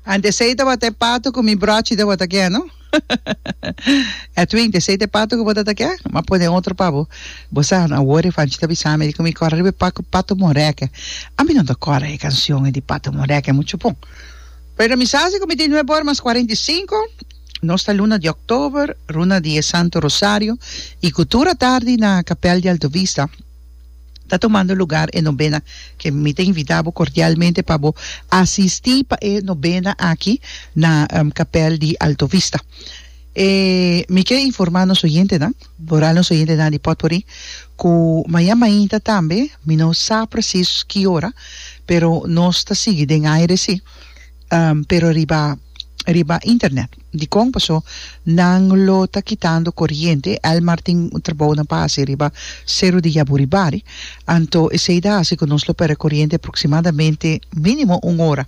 Ante esei tabata e patu ku mi bròchi tabata ke, no? Edwin, ante esei ta e patu ku bo tabata ke? M'a pone otro pa bo. Bo sa, no a wori, Fanchi ta bisa mi di ku mi kòrè riba e patu ku Patu Morèkè. Ami no ta kòrè e kanshon ei di Patu Morèkè muchu bon. Pero mi sa si ku mi tin nuebe ora mas kuarenta i sinku, nos ta luna di òktober, runa di e Santu Rosario i ku tur atardi na Kapèl di Alto Vista, ta tomando lugar e nobena ke mi ta invita bo kordialmente pa bo asistí pa e nobena aki na kapèl di Alto Vista. E mi ke informá nos oyentenan, boral nos oyentenan di Potpourri, ku maña mainta tambe, mi no sa presis ki ora, pero nos ta sigui den aire sí, pero riba riba internet. Dikon pasó nan lo ta kitando koriente? Elmar tin un trabou na pa hasi riba Seru di Yaburi Bari, anto esei ta hasi ku nos lo pèrdè koriente aproksimadamente mínimo un ora.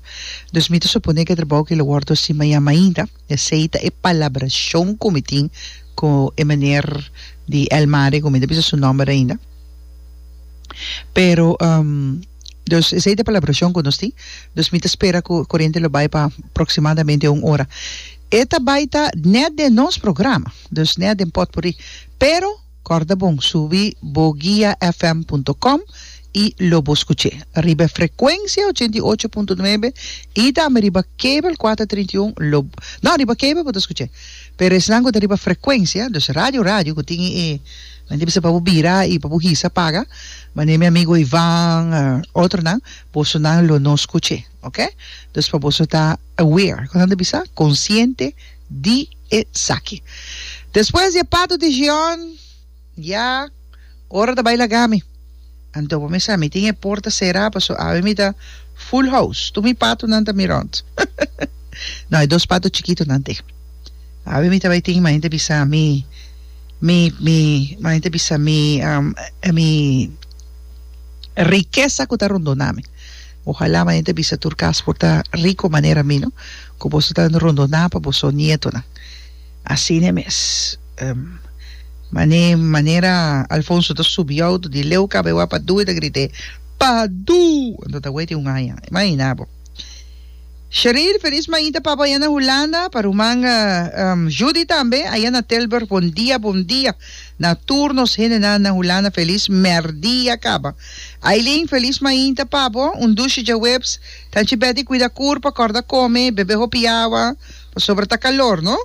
Dus mi ta suponé ku e trabou aki lo wòrdu hasi mañan mainta. Esei ta e palabrashon ku mi tin ku e meneer di Elmar, ku mi no a bisa su nòmber ainda, pero. Dus esei ta palabrashon ku nos tin. Dus mi ta spera ku e korente lo bai pa proksimadamente un ora. E ta bai ta nèt den nos programa, dus nèt den pòtpuri. Pero kòrda bon, subi bo guiafm punto com i lo bo skuch'é riba e frekuensia ochenta i ocho punto nuebe i tambe riba kabel kuater trinta i un lo no riba kabel bo ta skuch'é pero esnan ku ta riba frekuensia, dus radio radio ku tin e. Nan debe ser pa bo bira y pa bo hisa paga mane mi amigo Ivan y otronan boso nan lo no scuche ok dus pa boso ta aware con nan ta bisa consciente di esaki despues di e pato di Gion ya ora ta bay lagami. Anto bo mester, mi tin e porta sera paso awe mi ta full house, tur mi patonan ta mi rond. No, e dos pato chikitonan te. Awe mi ta bai tin, mane ta bisa mi, mi, mi, mane ta bisa mi, um, mi rikesa ku ta rondona mi. Ohala mane ta bisa tur kas por ta riko manera mi, no, ku boso ta rondona pa boso nietonan. Asina mes. Mane manera Alfonso ta subi auto di leu kaba e wak Padu e ta grit'e, Padu! Anto ta wei tin un aña. Imagina bo. Shereen, felis mainta pabo ayan na Hulanda, pa ruman Judy tambe ayan na Tilburg bon dia bon dia na tur nos hendenan na Hulanda felis merdia kaba. Aileen, felis mainta pabo, un dushi djaweps, tanchi Betty kuida kurpa, kòrda kome, bebe hopi awa, Pasobra ta calor no.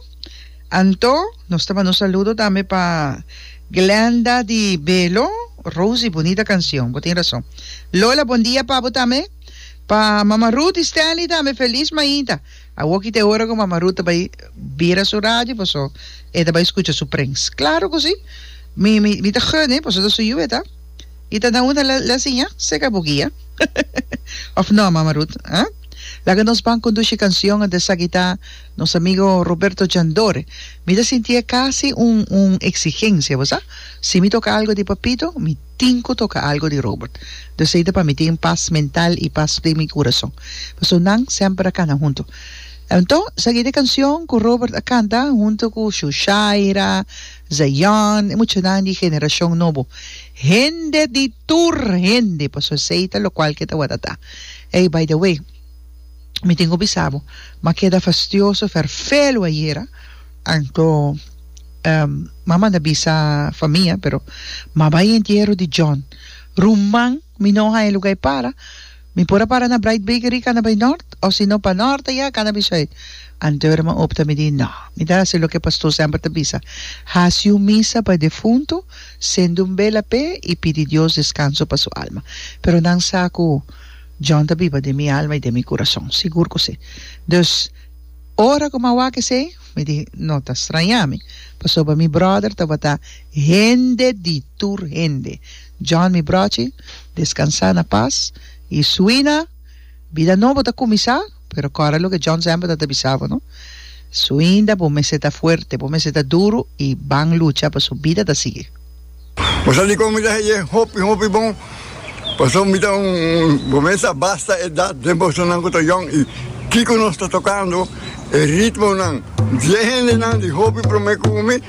Anto nos ta manda un saludo tambe pa Glenda di Belo, Rosie bunita cancion bo tin rason. Lola bon dia pa bo tambe. Pa Mama Ruth y Stanley tambe feliz mainta. Awoki ta e ora cu Mama Ruth ta bay bira su radio paso e ta bay scucha su prengs. Claro cu si. Mi mi ta gunnen paso ta su yu e ta. y ta na una la siña seca bo guia of no mama Ruth ah? Laga nos ban conduci cancion ante esaki ta nos amigo Roberto Jandor mi ta sinti e casi un un exigencia bo sa si mi toca algo di Papito mi tin cu toca algo di Robert do esey ta pa mi tin paz mental y paz den mi curason paso nan semper a cana hunto enton esaki ta e cancion cu Robert a canta hunto cu Shushaira Zion, e muchanan di generashon nobo, hende di tur hende, pasobra esei ta lokual ke ta wòrda ta. Ey, by the way, mi tin ku bisa bo, mi a keda fastioso ferfelu ayera, anto mi a manda bisa for mia, pero mi a bai e entiero di John, ruman, mi no haña luga e para. Mi por a para na Bright Bakery kana bai nort, o si no pa nort aya kana bai sùit? Anteur mi opta mi di, No. Mi ta hasi loke pastor semper ta bisa, Hasi un misa pa e defuntu, sende un bela p'e i pidi Dios deskanso pa su alma. Pero nan sa ku John ta biba den mi alma i den mi kurason. Sigur ku si. Dus, ora ku mi a wak esei, mi di, No ta straña mi, pasobra mi bròder tabata hende di tur hende. John mi brochi, descansá na pas y suina, bida nobo ta cuminsá, pero corda loke John semper ta ta bisa bo no, suinda bo mester ta fuerte, bo mester ta duro y ban lucha pa su bida ta sigui. Bo sa dikon mi ta haye hopi hopi bon, paso mi ta un bo mes a basta edad den bosonan ku ta yong y kiko nos ta tokando e ritmonan, diez hendenan di hopi prome ku mi.